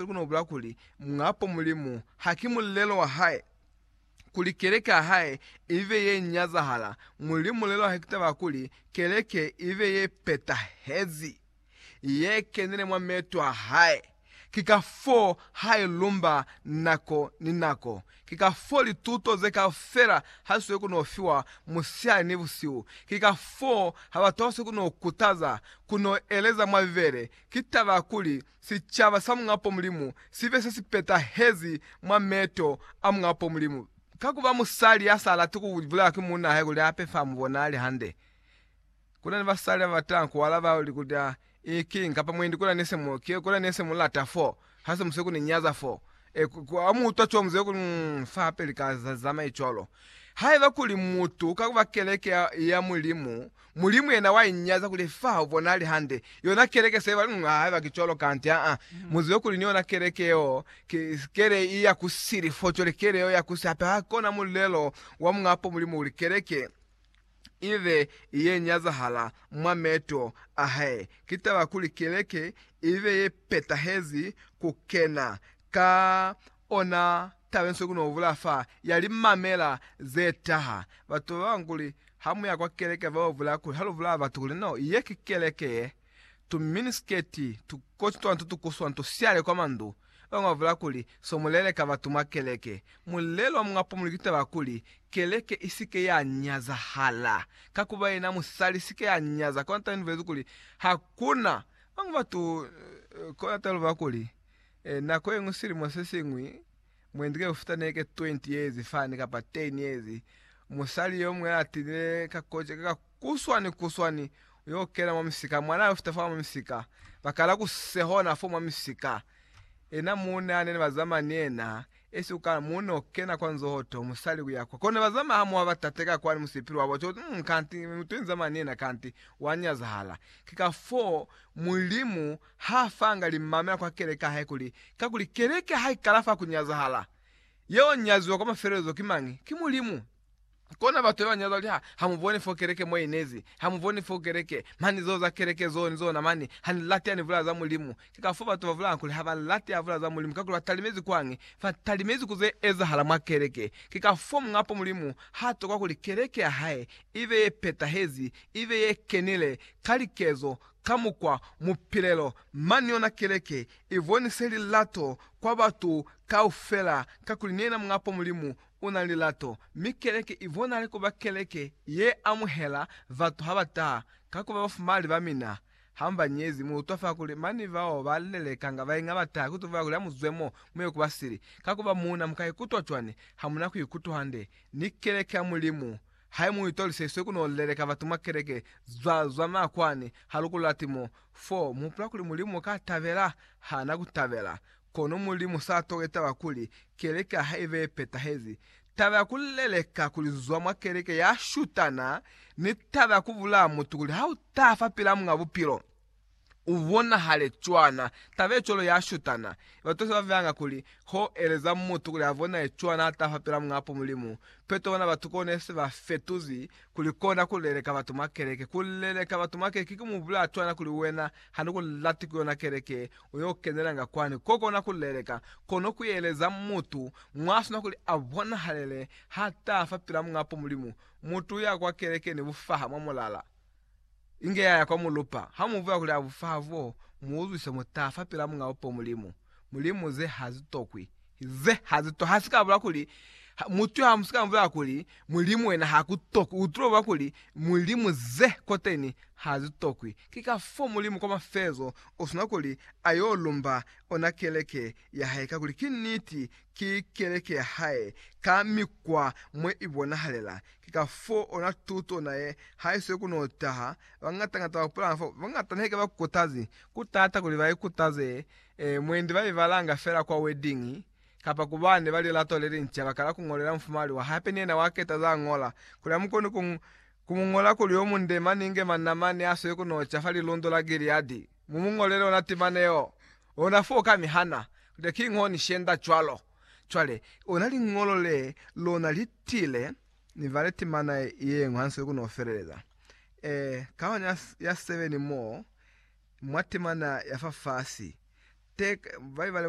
Hape ku no bula kuli, Muñapo Mulimu ha ki mulelo wa Hae, kuli Keleke ya Hae ibe ye nyazahala. Mulimu mulelo wa Hae ki taba ya kuli Keleke ibe ye petahezi, ye kenile mwa meeto a Hae. Ki kafoo Ha i lumba nako ni nako. Ki kafoo lituto ze kaufela ha li sweli ku no fiwa musihali ni busihu. Ki kafoo ha batu ba sweli ku no kutaza ku no eleza mwa Bibele. Ki taba ya kuli sicaba sa Muñapo Mulimu sibe se si petahezi mwa meto a Muñapo Mulimu. Ka ku ba musali ya sa lati ku bulelwa ki muuna hae kuli a pe fa mu bonali hande, ku na ni basali ba ba tanga ku alaba li kuli, A i ki eng? kapa Mwendi, ku na ni se mu, ki, ku na ni se mu lata fo, ha se mu se ku ni nyaza fo. E, ku, ku, ha mu utwa cwalo, mu zibe kuli, Um, fa hape li ka za, zamai cwalo. Haiba kuli mutu ka ku ba keleke ya, ya Mulimu, Mulimu yena wa inyaza kuli fa u bonali hande yona keleke se ba nunga haiba ki cwalo kanti aa. Mu zibe kuli ni yona keleke yeo ki kele i ya ku sili fo cwale kele yeo ya ku si hape ha kona mulelo wa munga po Mulimu uli keleke i be i ye nyazahala mwa meto a hae. Ki taba kuli keleke i be ye petahezi ku kena ka Ona taba inso kuno vula fa ya li mamela ze taha. Batu ba banga kuli ha mu ya kwa keleke ba vula kuli ha lu vula batu kuli no, ye ki keleke ye, tu mini sketi, tu koti twa nto tu kuswa nto siale kwa mandu. Ba banga ba vula kuli so mu leleka batu mwa keleke. Mulelo wa munga pumuli ki taba kuli keleke i si ke ya nyazahala. Ka ku ba yena musali si ke ya nyaza, kona taba ye ni bulezi kuli ha kuna. Ba banga batu kona taba ye lu vula kuli E, nako yeñwi silimo sesiñwi, mwendi ke ufuta neke 20 years fani kapa 10 years, musali yomuñwi atile ka koca ka kuswani kuswani uyo kena mwa misika, mwana yo fita fa mwa misika, bakala ku sehona fo mwa misika, ena muune anene bazama ni ena, esi ukala muune okena kwa nzoho to, musali kuya kwa kona bazama ha mwa batate ka kwani musipili wabo, uti uti mm kanti mutu inzama ni ena kanti wa nyazahala, ke ka foo Mulimu Ha fanga limamela kwa keleke ya hae kuli, kakuli keleke ha ikala fa kunyazahala, yeo nyaziwa kwa mafelelezo ki mañi? Ki Mulimu. Kona batu yeo nyaziwa kuli, ha, ha mu boni fo keleke mo inezi, ha mu boni fo keleke, mani zeo za keleke zeo ni zona mani, ha ni lati ha ni bulaya za Mulimu. Ki kafo batu ba bulaya kuli ha ba lati ha bulaya za Mulimu, kakuli ba talimezi kwañi? Fa talimezi ku ze ezahala mwa keleke. Ki kafo Muñapo Mulimu ha tokwa kuli keleke ya hae ibe ye petahezi, ibe ye kenile ka likezo, Ka mukwa mupilelo mani yona keleke i bonise lilato kwa batu kaufela, kakuli ni yena Muñ'a po Mulimu u na ni lilato, mi keleke i bonale ku ba keleke ye amuhela batu ha ba taha, ka ku ba bafumali ba mina. Ha mu ba nyezi, mu utwa fa kuli mani bao ba lelekanga ba inga ba taha ku tuba kuli ha mu zwe mo, mu ye ku ba sili. Ka ku ba muuna mu ka ikutwa cwani ha mu na ku ikutwa hande ni keleke ya Mulimu? Hai mu itolise iswe ku no leleka batu mwa keleke zwa zwa makwani ha lu ku lati mo, fo mu hupula kuli Mulimu ka tabela? Ha na ku tabela. Kono Mulimu sa toke taba kuli keleke ha ibe ye petahezi. Taba ya ku leleka kuli zwa mwa keleke ya shutana ni taba ya ku bulaya mutu kuli ha u ta fa pila Muñ'a Bupilo. u bonahale cwana taba ye cwalo ya shutana. Batwashe ba vanga kuli, Ho eleza mutu kuli a bonahale cwana ha taha pela Muñapo Mulimu. Peto ona batu kona ne se ba fetuzi kuli kona ku leleka batu mwa keleke. Ku leleka batu mwa keleke ki ku mu bulela cwana kuli, Wena ha ni ku lati ku yona keleke u yo kenelanga kwani. Ko kona ku leleka, kono ku eleza mutu mwa sina kuli a bonahalele ha taha fa pela Muñapo Mulimu, mutu u ya kwa keleke ni bufaha mwa mulala. Inge yaya kwa mulupa. Ha mu buya kuli a bu fa bo, mu uzwise mu ta fa pila Muñ'a Bupo Mulimu. Mulimu ze ha zi tokwi. Ze ha zi to. Ha si ka bula kuli, ha, mutu yo ha mu si ka mu bulela kuli, Mulimu wena ha ku tokwi. U tulo bula kuli, Mulimu ze koteni ha zi tokwi. Ki ka fo Mulimu kwa mafezo u sina kuli a yo lumba ona keleke ya hae ka kuli ki niti ki keleke ya hae ka mikwa mwe ibonahalela. Ki ka fo ona tuto na ye ha isweli ku no taha. Bañata-ñata ba pulanga fo bañata ne ka ba kutazi ku tata kuli ba ikutaze mwendi ba ibalanga fela kwa wedding kapa ku bane ba lilato le linca. Ba kala ku ñolela mufumali wa hae hape ni yena wa keta za ñola kuli a mu koni ku ku mu ñola kuli yo munde mani inge manna mani ya sweli ku no ca fa lilundo la Gileadi. Mu mu ñolele ona timana yeo. Ona foo ka mi hana kute ki ngo ni shenda cwalo. Cwale, ona liñolo le lona li tile, ni vale timana yeñwi hansweli ku no feleleza. E, kahwana ya, ya seveni moo, mwa timana ya fa fasi, te, ba li bale,